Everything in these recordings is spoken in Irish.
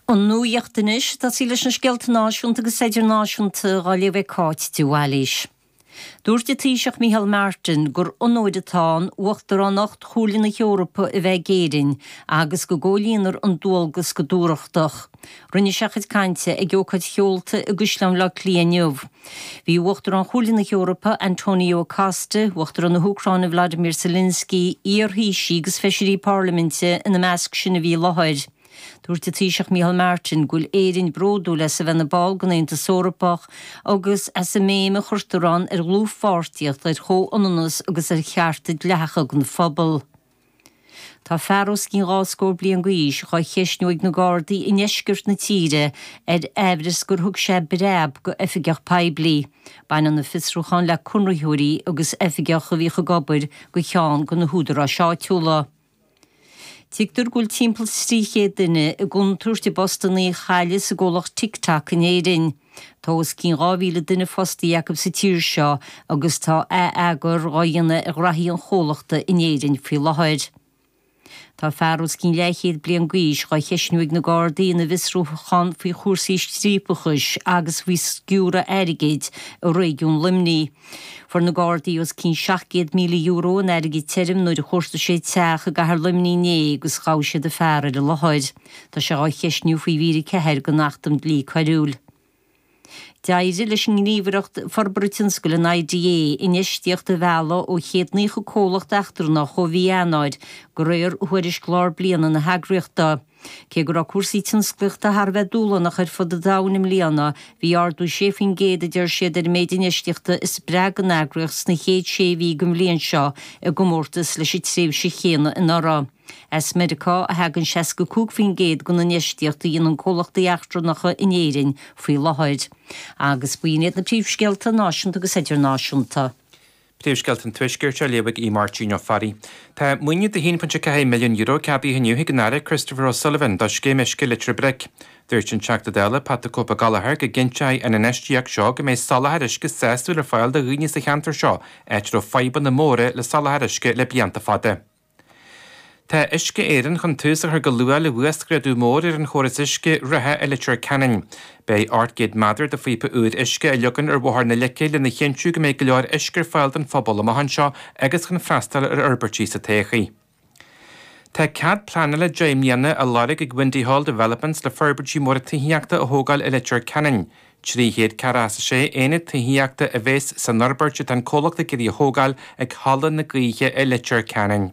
An nuacht anois a dó, tosóidh muid leis na scéalta náisiúnta agus idirnáisiúnta á léamh ag Cáit de Bhailís. Dúirt an Taoiseach Micheál Martin gur onóir atá ann Uachtaránacht Chomhairle na hEorpa a bheith ag Éirinn agus go gcomhlíonfar an dualgas go dúthrachtach. Rinne sé a chuid cainte ag ócáid sheolta i gCaisleán Bhaile Átha Cliath inniu. Bhí Uachtarán Chomhairle na hEorpa, António Costa, Uachtarán na hÚcráine Volodymyr Zelensky, iar-Thaoisigh agus feisirí parlaiminte i measc sin a bhí i láthair. Dúirt an Taoiseach Micheál Martin go bhfuil Éirinn bródúil as a bheith ina ball den Aontas Eorpach agus as an mbéim a chuirtear ann ar dhlúthpháirtíocht, ar chomhionannas agus ar chearta dleathacha don phobal. Tá fear os cionn dhá scór bliain d'aois á cheistniú ag na Gardaí i ndeisceart na tíre ar amhras gur thug sé breab do oifigeach poiblí. Baineann an fiosrúchán le conraitheoirí agus oifigeach a bhíodh ag obair do cheann de na húdaráis áitiúla. Tuigtear go bhfuil timpeall 300 duine i gcontúirt a bpostanna a chailleadh sa gcomhlacht TikTok in Éirinn. Tá os cionn 2,000 duine fostaithe acu sa tír seo agus tá atheagar dhá dhéanamh ar ghnaithí an chomhlachta in Éirinn faoi láthair. Tá fear os cionn leathchéad bliain d'aois dhá cheisniú ag na Gardaí ina bhfiosrúchán faoi chúrsaí striapachais agus faoi sciúradh airgid i réigiún Luimnigh. Fuair na Gardaí os cionn €700,000 in airgead tirim nuair a chuartaigh siad teach i gCathair Luimnigh inné agus ghabh siad an fear ar an láthair. Tá sé á cheistniú faoi mhír 4 den Acht um Dlí Coiriúil. D'éirigh leis an nGníomhaireacht Forbartha Tionscail, an IDA, infheistíocht a mhealladh ó chéad 90 comhlacht eachtrannach ó mhí Eanáir, de réir thuairisc lár bliana na heagraíochta. Cé go raibh cúrsaí tionsclaíochta thar a bheith dúshlánach ar fud an domhain i mbliana, bhí ardú 6 faoin gcéad a deir siad ar an méid infheistíochta a spreag an eagraíocht sna chéad sé mhí den bhliain seo i gcomórtas leis an tréimhse chéanna anuraidh. As Meiriceá a thagann 65% den infheistíocht a dhéanann comhlachtaí eachtrannacha in Éirinn faoi láthair. Agus b'in iad na príomhscéalta náisiúnta agus idirnáisiúnta. Príomhscéalta an Tuaiscirt á léamh ag Máirtín Ó Fearraigh. Tá maoiniú de €1.4 milliún ceadaithe inniu ag an Aire Christopher O'Sullivan do scéim uisce Leitir Bric. Dúirt an Teachta Dála Pat the Cope Gallagher go gcinnteoidh an infheistíocht seo go mbeidh soláthar uisce sásúil ar fáil do dhaoine sa cheantar seo áit a raibh fadhbanna móra le soláthar uisce le blianta fada. Tá Uisce Éireann chun tús a chur go luath le huasghrádú mór ar an chóras uisce reatha i Leitir Ceanainn. Beidh ocht gcéad méadar de phíopa úir uisce á leagan ar bhóthar na Leice lena chinntiú go mbeidh go leor uisce ar fáil don phobal i mbliana seo agus chun freastal ar fhorbairtí sa todhchaí. Tá cead pleanála deich mbliana á lorg ag Windy Hall Developments le forbairtí móra tithíochta a thógáil i Leitir Ceanainn. 346 Aonad Tithíochta a bheas san fhorbairt atá an comhlacht ag iarraidh a thógáil ag Halla na Gaoithe i Leitir Ceanainn.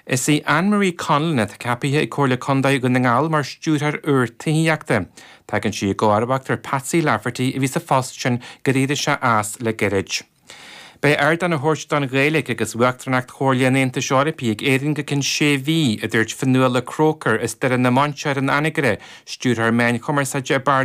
Is í Anne Marie Conlon atá ceapaithe ag Comhairle Condae Dhún na nGall mar Stiúrthóir úr Tithíochta. Tagann sí i gcomharbacht ar Patsy Lafferty a bhí sa phost sin gur éirigh sé as le gairid. Beidh ardán á thabhairt don Ghaeilge agus uachtaránacht Chomhairle an Aontais Eorpaigh ag Éirinn go cionn sé mhí, a dúirt Fionnuala Croker as Doire na Mainséar in Anagaire, Stiúrthóir Meán Cumarsáide i bParlaimint.